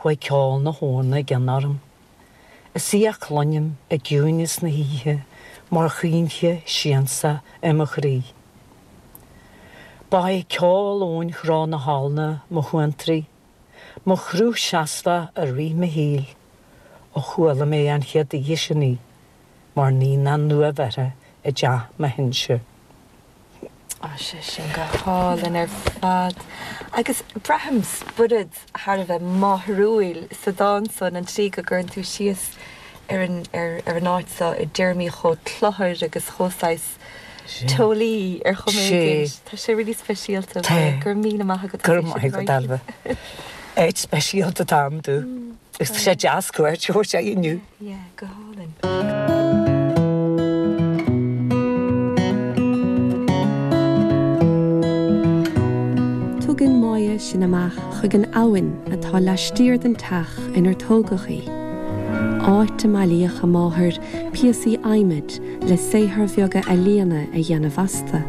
Chuaigh ceol na habhna i gcion orm. Is í a chluinim i gciúineas na hoíche mar chaoinche siansa ar mo chroí. Ba é ceol Eoin Chró na habhna mo shuantraí, mo chruth seasmhach i rith mo shaoil ó chuala mé an chéad oíche sin í mar naíonán nuabheirthe i dteach mo shinsir. Tá sé sin go hálainn ar fad agus braithim spiorad thar a bheith máithriúil sa dán san, an tslí go gcuireann tú síos ar an, ar, ar an áit so i dtéarmaí chomh cluthair agus chomh saghas teolaí ar chuma éigin. Sea. Tá sé really speisialta. Tá. Go raibh míle maith agat Go raibh maith agat, Ailbhe. Áit speisialta atá iontu. Agus tá sé deas cuairt a thabhairt inniu. Yeah, go hálainn. Tugann Máire sinn amach chuig an abhainn atá laistiar den teach inar tógadh í, áit a mbailíodh a máthair píosaí adhmaid le saothair bheaga ealaíona a dhéanamh astu.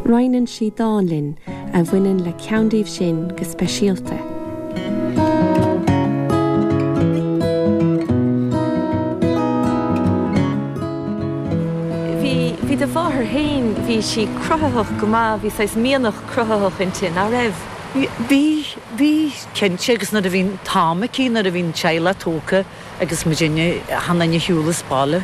Roinneann sí dán linn a bhaineann le ceann díobh sin go speisialta. Bhí do mháthair féin, bhí sí cruthaitheach go maith, bhí saghas mianach cruthaitheach inti, nach raibh? Bhí, bhí, cinnte, agus nuair a bhí an t-am aici, nuair a bhí an teaghlach tógtha, Agus muidinne achan nduine ar shiúl as baile.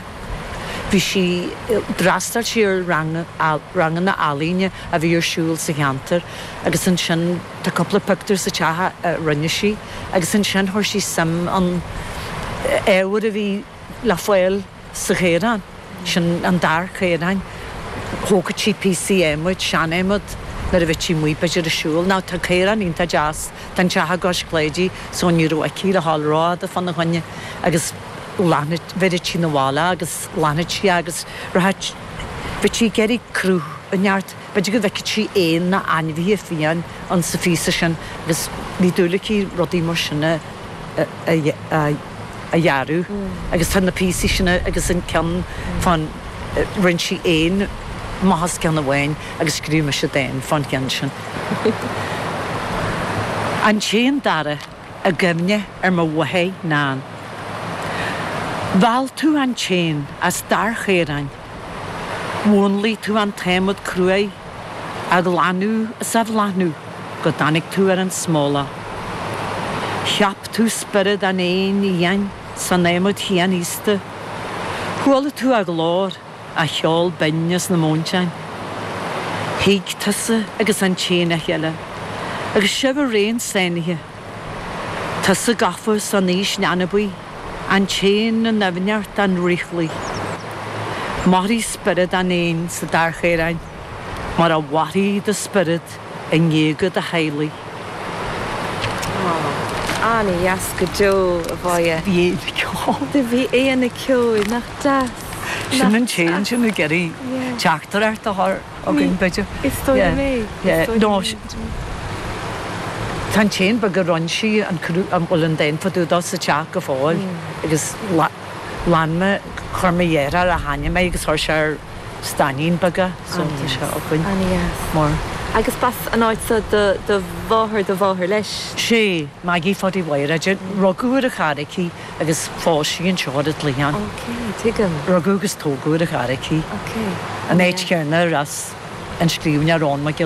Bhí sí, d'fhreastail sí ar ranganna ealaíne a bhí ar siúl sa cheantar agus ansin tá cúpla pictiúr sa teach a rinne sí agus ansin chuir sí suim in ábhar a bhí le fáil sa chaorán. Sin an dair chaoráin. Thógfadh sí píosaí adhmaid, sean adhmad, nuair a bheadh sí amuigh b'fhéidir ag siúl. Now tá caorán iontach deas, tá an teach i gcois Chláidí so ní raibh aici le ghabháil ró-fhada fá na choinne agus ghlanfadh, bheireadh sí na bhaile agus ghlanfadh sí agus rachadh, bheadh sí ag iarraidh cruth inteacht. B'fhéidir go bhfeicfeadh sí éan nó ainmhithe fiáin insa phíosa sin agus bhí dúil aici rudaí mar sin a dhearadh agus tá na píosaí sin agus an ceann fán rinne sí éan amach as ceann amháin agus scríobh mise dán fán cheann sin. An tÉan Dara i gcuimhne ar mo mháthair Nan Mheall tú an t-éan as dair chaoráin. Mhúnlaigh tú an t-adhmad cruaidh á ghlanadh is á bhláthnú go dtáinig tú ar an smólach. Cheap tú spiorad an éin fhiáin san adhmad chianaosta. Chuala tú a ghlór, a cheol binn as na móinteáin. Thuig tusa agus an t-éan a chéile agus sibh araon sáinnithe. Tusa gafa san aois leanbaí. An t-éan i ndoimhneacht an fhraochlaigh. Mairfidh spiorad an éin sa dair chaoráin mar a mhairfidh do spiorad i ngéaga do theaghlaigh. Aww. Ana-dheas go deo, a Mháire. Do bhí éan ag ceol. Do bhí éan ag ceol. Nach deas. Sin an t-éan sin ag iarraidh teacht thart, a Mháire. againn, b'fhéidir. Is dóigh liom é. Is dóigh liom é. Tá an t-éan beag a rinn sí an cruach, a bhfuil an dán fá dtaobh dó sa teach go fóill agus lean mé, chuir mo dheartháir a tháinig mé agus chuir sé ar stainnín beag é so tá sé againn. Ana dheas. Mar. Agus b'as an áit seo do do mháthair, do mháthair leis? Sé, Maggie Phaidí Mháire. Rugadh ar an Charraic í. agus phós sí an tseoid id' chliathán. OK, tuigim. Rugadh agus tógadh ar an Charraic í. OK. An áit chéarna ar as an scríbhneoir Eoghan Mac Giolla.